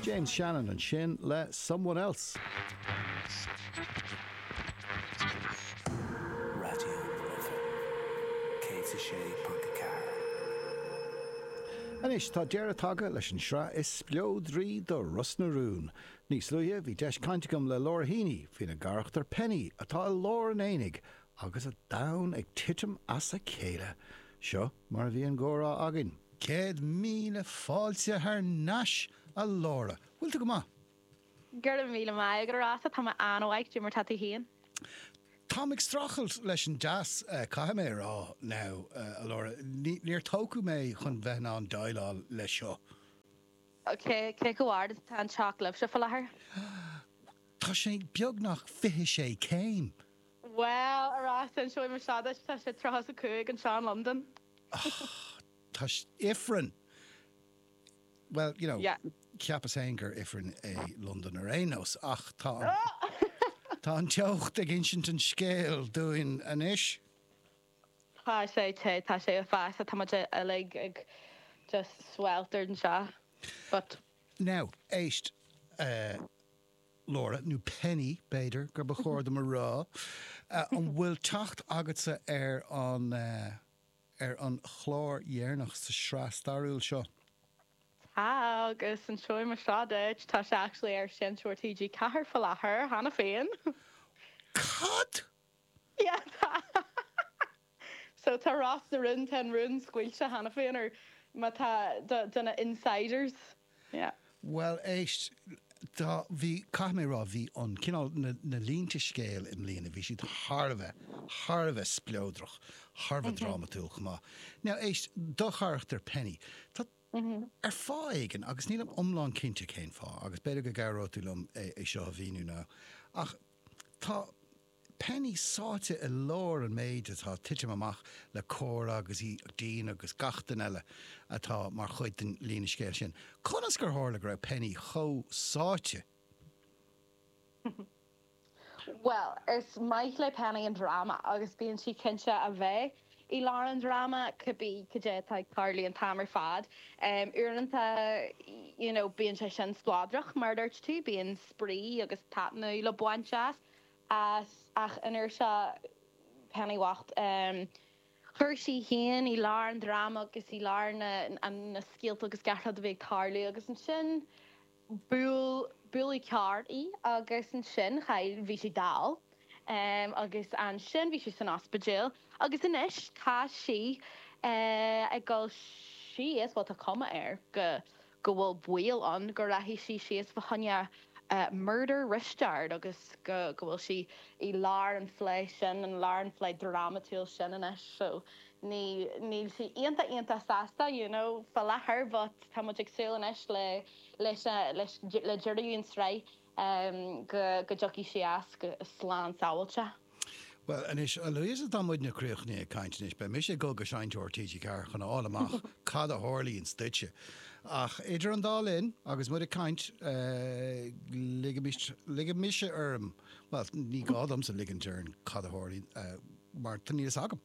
James Shannon ansin le Someone Else. Anois tá deireadh tagtha leis an sraith is spleodraí de Ros na Rún. Níos luaithe bhí deis caint agam le Laura Heeney faoina carachtar Penny atá i lár an aonaigh agus a domhan ag titim as a chéile. Seo mar a bhí an gcomhrá againn. Céad míle fáilte thar n-ais, a Laura. Bhfuil tú go maith? Go raibh míle maith agat, a Rossa. Tá mé an-mhaith, cad é mar atá tú féin? Táim ag streachailt leis an dteas, caithfidh mé a rá, now, a Laura. Níor tógadh mé chun bheith in ann déileáil leis seo. Cé chomh ard is atá an teocht libhse faoi láthair? Tá sé beagnach fiche sé céim. Bhuel, ar ais inseoidh mé rud duit, tá sé tríocha is a cúig anseo in Londain. Tá ifreann, bhuel, you know, cheapas féin gur ifreann é Londain ar aon nós, ach tá tá an teocht ag insint an scéil dúinn anois. Tá sé te, tá sé i bhfeasta, tá muid uilig ag just sweltered anseo, but. Now, éist. Laura, nó Penny, b'fhéidir, gur ba chóir dom a rá. An bhfuil teacht agatsa ar an, ar an chlár dheireanach sa sraith stairiúil seo? Tá, agus inseoidh mé rud duit, tá sé actually ar Seinnteoir TG4 faoi láthair cheana féin. Cad? So tá Ros na Rún, tá an rún scaoilte cheana féin, ar maidin, do, do na insiders, yeah. Bhuel, éist, tá, bhí, caithfidh mé a rá, bhí an cineál, na, na línte scéil i mbliana, bhí siad thar a bheith, thar a bheith spleodrach, thar a bheith drámatúil chomh maith. Now, éist, do charachtar Penny, tá, ar fáth éigin, agus nílim iomlán cinnte cén fáth, agus b'fhéidir go gcabhróidh tú liom é, é seo a mhíniú now, ach, Tá Penny sáite i lár an méid atá ag titim amach le Cora agus Éadaoin agus gach duine eile atá mar chuid den líne scéil sin. Conas gur tharla go raibh Penny chomh sáite? Bhuel, is maith le Penny an dráma agus bíonn sí cinnte a bheith. I lár an dráma, cibé cad é atá ag tarlú an t-am ar fad, uaireanta, you know, bíonn sé sin spleodrach, mar a dúirt tú, bíonn spraoi agus taitneamh le baint as, as, ach an uair seo, Penny bhocht, chuir sí féin i lár an dráma agus i lár na, na scéalta agus gach rud a bhí ag tarlú agus ansin, Bhuail, bhuail carr í agus ansin chaill, bhí sí dall agus ansin bhí sí san ospidéal agus anois tá sí ag dul síos, bhuel tá cuma air go go bhfuil baol ann go rachaidh sí síos fá choinne Murder Risteard agus go go bhfuil sí i lár an phlé sin, an lár an phlé drámatúil sin anois so ní, níl sí iontach iontach sásta, you know, fá láthair but tá muid ag súil anois le, leis, leis, le deireadh an sraith ehm go, go dtiocfaidh sí as go, slán sábháilte. Bhuel anois, Louisa tá muidne críochnaithe ag caint anois, beidh mise ag dul go seinnteoir TG4 chun a fháil amach cad a tharlaíonns duitse ach idir an dá linn agus muid ag caint eh ligimist, ligfidh mise orm, bhuel ní gá domsa ligint orm cad a tharlaíonn eh mar níl fhios agam.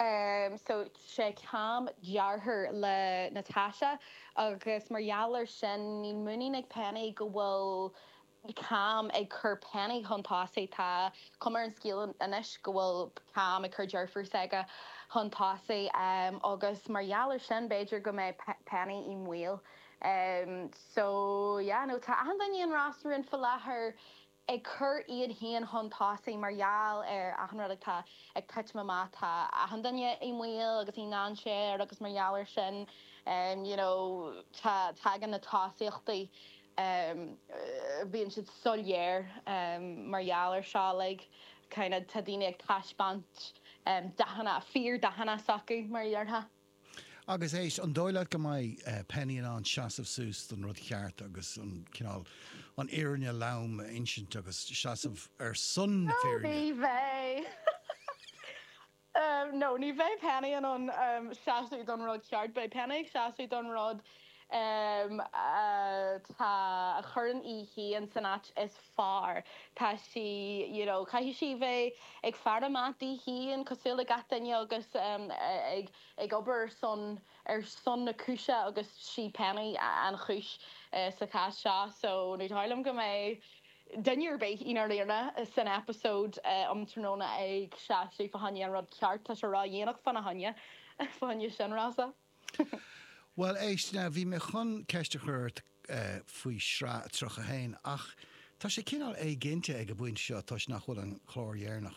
Um so sé Cam deartháir le Natasha agus mar gheall ar sin níl muinín ag Penny go bhfuil Cam ag cur Penny chun tosaigh. Tá cuma ar an scéal anois go bhfuil Cam ag cur deirfiúr s'aige chun tosaigh agus mar gheall ar sin b'fhéidir go mbeidh Penny i mbaol. Um so yeah no tá achan duine i an restaurant faoi láthair. ag cur iad féin chun tosaigh mar gheall ar achan rud atá ag titim amach, tá achan duine i mbaol agus i ndainséar agus mar gheall air sin you know tá tagann na tosaíochtaí bíonn siad soiléir mar gheall air seo like kind of tá daoine ag taispeáint dathanna, fíor-dhathanna s'acu mar a déarfá. Agus éist, an dóigh leat go mbeidh Penny in ann seasamh suas don rud cheart agus an cineál, an fhírinne lom a insint agus seasamh ar son na fírinne? Ní bheidh. No, ní bheidh Penny in ann seasamh don rud ceart. Beidh Penny ag seasamh don rud atá, a chuireann í féin san áit is fearr. Tá sí you know caithfidh sí bheith ag faire amach di féin cosúil le gach duine agus ag ag obair ar son ar son na cúise agus sí Penny an chúis sa chás seo. So ní dóigh liom go mbeidh duine ar bith ina laochra san episode um tráthnóna ag seasamh fá choinne an rud ceart tá sé ródhéanach fána choinne fá choinne sin Rossa. Bhuel, éist, now, bhí mé chun ceist a chur ort faoi shraith 31, ach tá sé cineál éiginnte ag an bpointe seo toisc nach bhfuil an clár deireanach